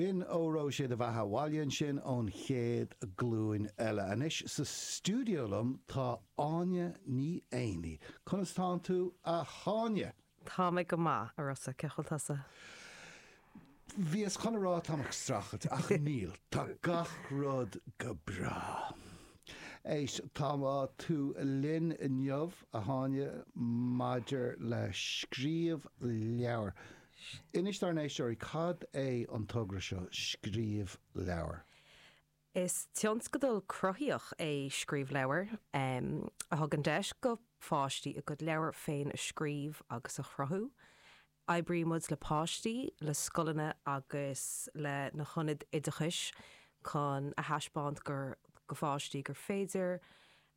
B'in Óró Sé do Bheatha abhaile ansin ón chéad ghlúin eile. Anois sa stiúideo liom tá Áine Ní Éanaigh. Conas tánn tú, a Áine? Tá mé go maith, a Rossa, cé chaoi bhfuil tusa? Bhíos chun a rá tá mé ag streachailt, ach níl, tá gach rud go breá. Éist, tá tú linn inniu, a Áine, maidir le Scríobh Leabhar. Inis dár n-éisteoirí cad é an togra seo, Scríobh Leabhar. Is tionscadal cruthaitheach é Scríobh Leabhar, a thugann deis do pháistí a gcuid leabhar féin a scríobh agus a chruthú. Oibrímid le páistí, le scoileanna agus le na hionaid oideachais chun a thaispeáint do pháistí gur féidir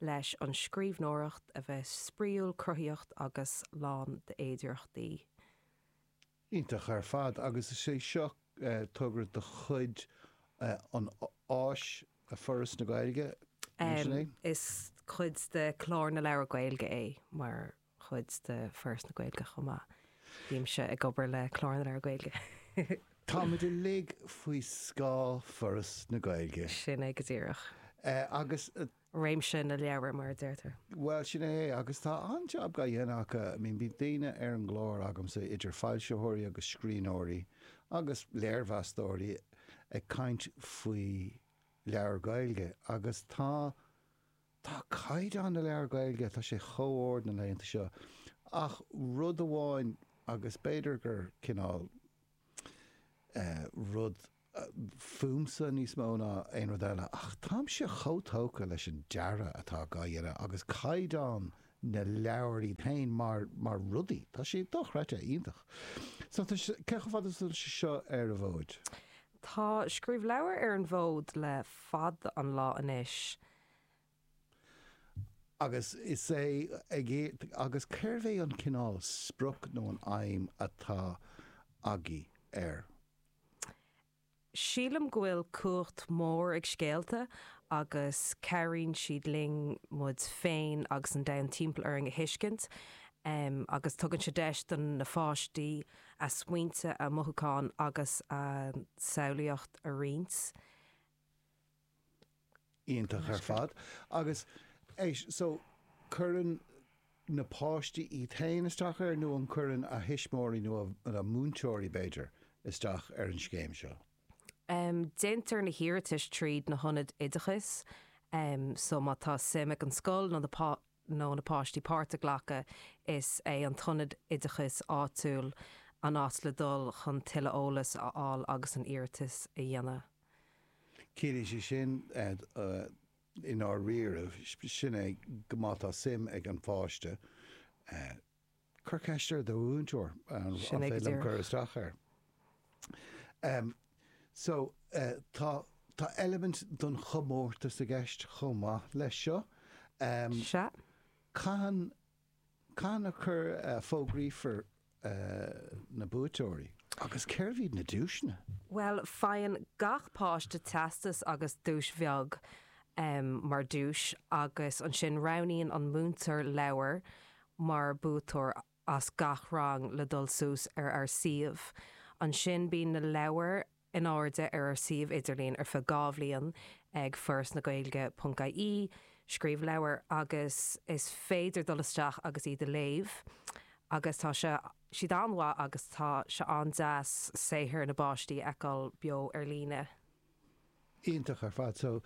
leis an scríbhneoireacht a bheith spraíúil, cruthaitheach agus lán d'fhéidireachtaí. Iontach ar fad agus is é seo togra de chuid an, ÁIS, Foras na Gaeilge, nach ea? Is cuid de Chlár na Leabhar Gaeilge é, mar chuid de Foras na Gaeilge chomh maith. Bímse ag obair le Clár na Leabhar Gaeilge. Táimid uilig faoi scáth Foras na Gaeilge. Sin é go díreach. Agus réimse na leabhar, mar a deirtear. Bhuel, sin é. Agus tá an-jab á dhéanamh acu. I mean, bhí daoine ar an gclár agamsa, idir foilsitheoirí agus scríbhneoirí agus léirmheastóirí, ag caint faoi leabhair Ghaeilge. Agus tá, tá caighdeán na leabhar Gaeilge, tá sé chomh ard na laethanta seo. Ach rud amháin, agus b'fhéidir gur cineál eh, rud, fúmsa níos mó ná aon rud eile, ach táimse chomh tógtha leis an dearadh atá á dhéanamh agus caighdeán na leabhar iad féin mar mar rudaí, tá siad dochreidte, iontach. So tá sé, cén chomh fada is atá sé seo ar an bhfód? Tá Scríobh Leabhar ar an bhfód le fada an lá anois. Agus is ea. Agus céard é an cineál sprioc nó an aidhm atá agaibh air. Sílim go bhfuil cumhacht mhór ag scéalta agus cabhraíonn siad linn muid féin agus an domhan timpeall orainn a thuiscint. Agus tugann sé deis do na pháistí a smaointe, a mothúcháin agus a samhlaíocht a roinnt. iontach ar fad agus so cuireann na páistí iad féin isteach air nó an cuireann a dtuismitheoirí nó na múinteoirí b'fhéidir isteach ar an scéim seo? Déantar na hiarratais tríd na hionaid oideachais so má tá suim ag an scoil nó na páistí páirt a ghlacadh is é an t-ionad oideachais áitiúil an áit le dul chun tuilleadh eolas a fháil agus an iarratas a dhéanamh. Ciallaíonn sé sin, i ndáiríribh, sin é go má tá suim ag an bpáiste, cuir ceist ar do mhúinteoir an féidir liom cur isteach air. So, tá eilimint den chomórtas i gceist chomh maith leis seo. Sea. Cathain Cathain a fógraífear na buaiteoirí agus cérb iad na duaiseanna? Bhuel, faigheann gach páiste teastas agus duais bheag mar dtús agus ansin roghnaíonn an múinteoir leabhar mar buaiteoir as gach rang le dul suas ar ár suíomh. Ansin bíonn na leabhair in airde ar ár suíomh idirlín ar feadh dhá bhliain ag Foras na Gaeilge ponc ie, Scríobh Leabhar, agus is féidir dul isteach agus iad a léamh agus tá siad an-mhaith agus tá sé an-deas saothar na bpáistí a fheiceáil beo ar líne. Iontach ar fad. So,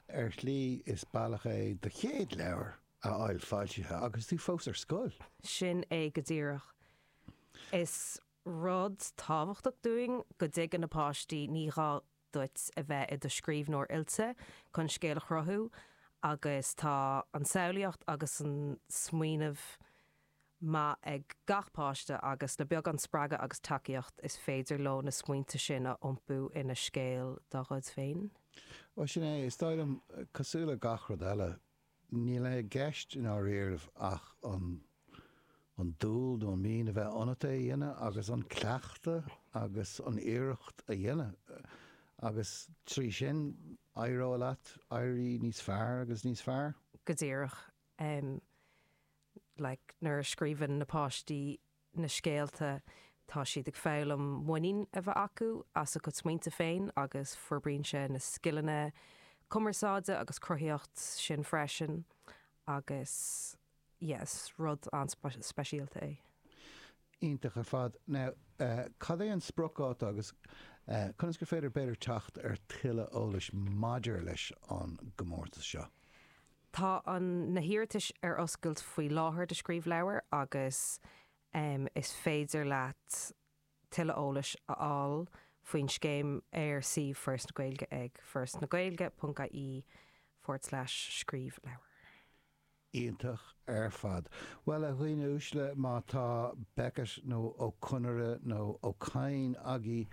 ar shlí is bealach é do chéad leabhar a fháil foilsithe agus tú fós ar scoil! Sin é go díreach. Is. Rud tábhachtach dúinn go dtuigeann na páistí, ní gá duit a bheith i do scríbhneoir oilte chun scéal a chruthú agus tá an tsamhlaíocht agus an smaoineamh maith ag gach páiste agus le beagán spreagadh agus tacaíocht is féidir leo na smaointe sin a iompú ina scéal dá gcuid féin. Bhuel, sin é. Is dóigh liom, cosúil le gach rud eile, Níl i gceist i ndáiríribh ach an an dúil nó an mian a bheith ionat é a dhéanamh agus an cleachtadh agus an iarracht a dhéanamh agus trí sin éireoidh leat éirí níos fearr agus níos fearr. Go díreach. Like nuair a scríobhann na páistí na scéalta, tá siad ag foghlaim muinín a bheith acu as a gcuid smaointe féin agus forbraíonn sé na scileanna cumarsáide agus cruthaíocht sin freisin agus yeah is rud an-speisialta é. Iontach ar fad. Now cad é an spriocdháta agus conas gur féidir b'fhéidir teacht ar tuilleadh eolas maidir leis an gcomórtas seo? Tá na hiarratais ar oscailt faoi láthair do Scríobh Leabhar agus is féidir leat tuilleadh eolais a fháil faoin scéim ar suíomh Foras na Gaeilge ag forasnagaeilge.ie/scríobh leabhar. Iontach ar fad. Bhuel a dhaoine uaisle má tá Beckett nó Ó Conaire nó Ó Cadhain agaí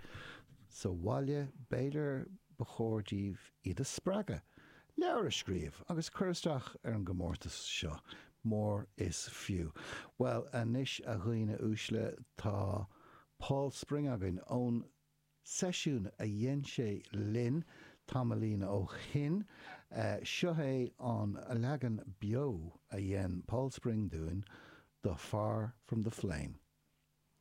sa bhaile b'fhéidir ba chóir daoibh iad a spreagadh leabhar a scríobh agus cur isteach ar an gcomórtas seo, mór is fiú. Bhuel anois a dhaoine uaisle, tá Paul Spring againn, ón seisiún a dhein sé linn tamaillín ó shin. Seo é an leagan beo a dhein Paul Spring dúinn do Far From The Flame.